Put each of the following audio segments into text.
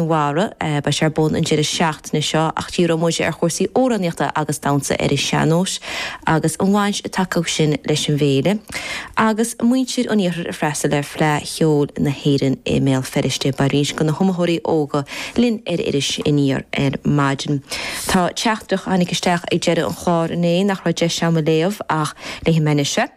Mhara, beidh sé ar bun an deireadh seachtaine seo ach díreoidh muid ar chúrsaí amhránaíochta agus damhsa ar an sean-nós agus an bhaint atá acu sin leis an bhféile agus muintir an iarthair ag freastal ar Fleadh Cheoil na hÉireann i mBéal Feirste. Beidh roinnt de na hiomaitheoirí óga linn ar Iris Aniar ar maidin. Tá teachtaireacht a tháinig isteach ag deireadh an chláir inné nach raibh deis agam a léamh ach léifidh mé anois é.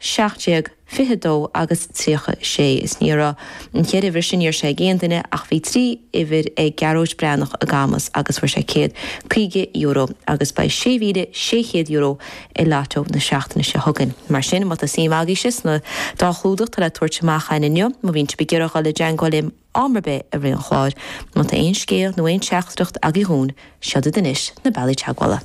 17, 22 agus 36, is ní raibh na cheithre uimhir sin uair sé ag aon duine ach bhí trí uimhir ag Gearóid Breathnach i gCamus agus fuair sé €150 agus beidh €6,600 i Lotto na seachtaine seo chugainn. Mar sin, má tá suim agaibhse sna dá chlúdach atá le tabhairt amach againn inniu, má bhíonn sibh ag iarraidh a dhul i dteagmháil linn am ar bith i rith an chláir, má tá aon scéal nó aon teachtaireacht agaibh dhúinn, seo iad anois na bealaí teagmhála.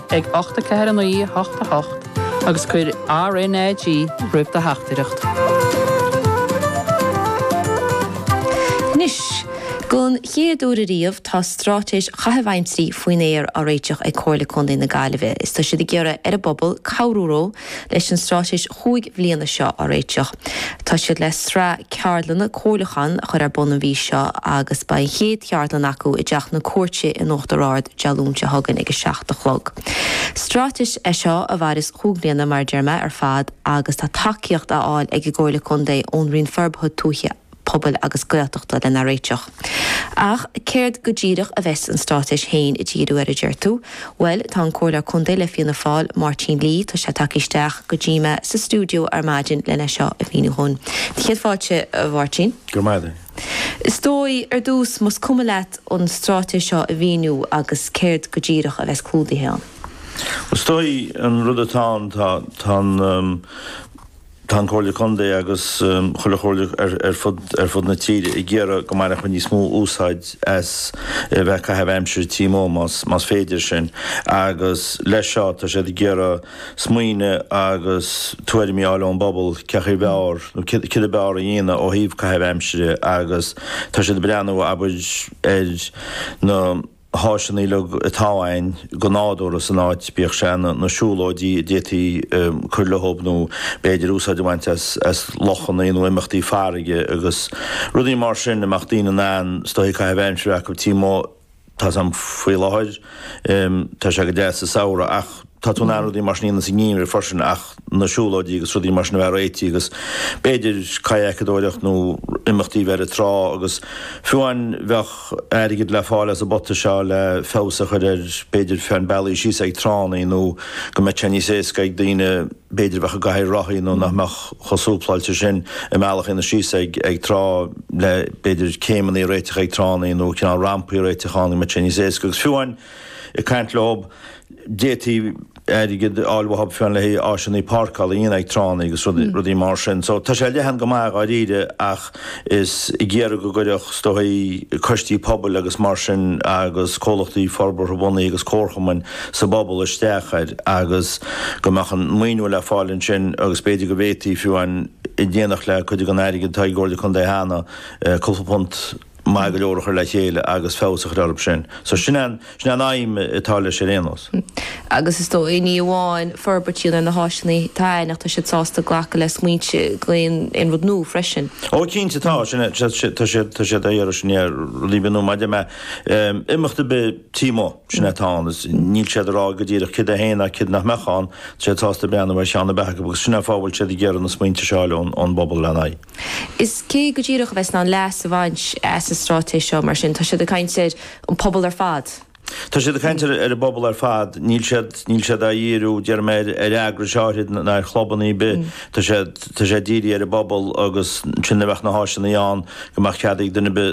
ag 8 4 9 8 8 agus cuir RNAG roimh do theachtaireacht. Anois, den chéad uair ariamh, tá stráitéis chaitheamh aimsire faoin aer á réiteach ag Comhairle Contae na Gaillimhe is tá siad ag iarraidh ar an bpobal cabhrú leo Leis an stráitéis chúig bhliana seo a réiteach, tá siad le sraith ceardlanna comhairliúcháin a chur ar bun an mhí seo agus beidh an chéad cheardlann acu i dTeach na Cúirte in Uachtar Ard Dé Luain seo chugainn ag a seacht a chlog. Stráitéis é seo a mhaireas chúig bhliana mar a deir mé ar fad agus tá tacaíocht á fháil ag an gComhairle Contae ón Roinn Forbartha Tuaithe pobail agus Gaeltachta lena réiteach. Ach céard go díreach a bheas an straitéis féin ag díriú air a deir tú? Bhuel, tá an Comhairleoir Contae le Fianna Fáil, Máirtín Lee, tá sé tagtha isteach go dtí mé sa stiúideo ar maidin lena seo a mhíniú dhúinn. Céad fáilte, a Mháirtín. Grma duit. Is dóigh, ar dtús, más cuma leat an straitéis seo a mhíniú agus céard go díreach a bheas clúdaithe ann. Is dóigh, an rud atá ann, tá an. Tá an Chomhairle Contae agus chuile chomhairle ar fud na tíre ag iarraidh go mbainfeadh muid níos mó úsáid as a bheith ag caitheamh aimsire taobh amuigh más féidir sin agus leis seo tá siad ag iarraidh smaointe agus tuairimí a fháil ón bpobal cé acu b'fhearr nó céard a b'fhearr a dhéanamh ó thaobh caitheamh aimsire agus tá siad ag breathnú abair ar na háiseanna uilig atá ann go nádúrtha san áit, bíodh sé na siúlóidí a d'fhéadfaí cur leob nó b'fhéidir úsáid a bhaint as lochanna nó imeachtaí farraige agus rudaí mar sin a mbeadh daoine in ann staithi caitheamh aimsire acu tigh amuigh tá sé faoi láthair tá sé go deas sa samhradh ach Tá tú in ann rudaí mar sin a dhéanamh sa ngeimhreadh freisin ach na siúlóidí agus rudaí mar sin a bheith réitithe agus b'fhéidir kayakedóireacht nó imeachtaí a bheith ar an trá agus fiú an bheadh airgead le fáil as an bpota seo le feabhas a chur ar b'fhéidir feadh an bealaigh síos ag tránna nó go mbeadh sé níos éasca ag daoine b'fhéidir a bheadh i gcathair rothaí nó nach mbeadh chomh súpláilte sin a mbealach a dhéanamh síos ag ag trá le b'fhéidir céimeanna a réiteach ag tránna nó cineál rampaí a réiteach ann go mbeadh sé níos éasca agus fiú an Ag caint leo, d'fhéadfaí airgead a fháil uathu féin le háiseanna páirceála a dhéanamh ag tránna agus rudaí mar sin. So tá sé leathan go maith dháiríre ach is ag iarraidh go gcuirfeadh is dóigh coistí pobail agus mar sin agus comhlachtaí forbartha bunaithe agus comharchumainn sa bpobal isteach air agus go mbeadh an maoiniú le fáil ansin agus b'fhéidir go bhféadfaí fiú é a dhéanamh le cuid den airgead atá ag an gComhairle Contae cheana, cúpla punt. maith go leor a chur le chéile agus feabhas a chur orthu sin. So sin an, sin an aidhm atá leis ar aon nós. Agus is dóigh, ní amháin forbairt ar na háiseanna atá ann ach tá siad sásta glacadh le smaointe d'aon aon rud nua freisin. Ó cinnte tá, sin é, tá siad, tá siad, tá siad ag iarraidh, sin é, rudaí a bhíonn nua maidir le, imeacht ar bith tigh amuigh, sin é atá ann, is níl siad ag rá go díreach céard é féin ach céard nach mbeadh ann, tá siad sásta breathnú ar cheann ar bith acu agus sin é fáth a bhfuil siad ag iarraidh na smaointe seo a fháil ón bpobal ar an aghaidh. Is cé go díreach a bheas in ann leas a bhaint as an straitéis seo, mar sin, tá siad ag caint ar an bpobal ar fad. Tá siad ag caint ar an bpobal ar fad. Níl siad, níl siad á dhíriú, déarfaidh mé, ar, ar eagrais áirithe ná ar chlubanna ar bith. Tá sé, tá sé dírithe ar an bpobal agus sin a bheadh na háiseanna ann go mbeadh cead ag duine ar bith,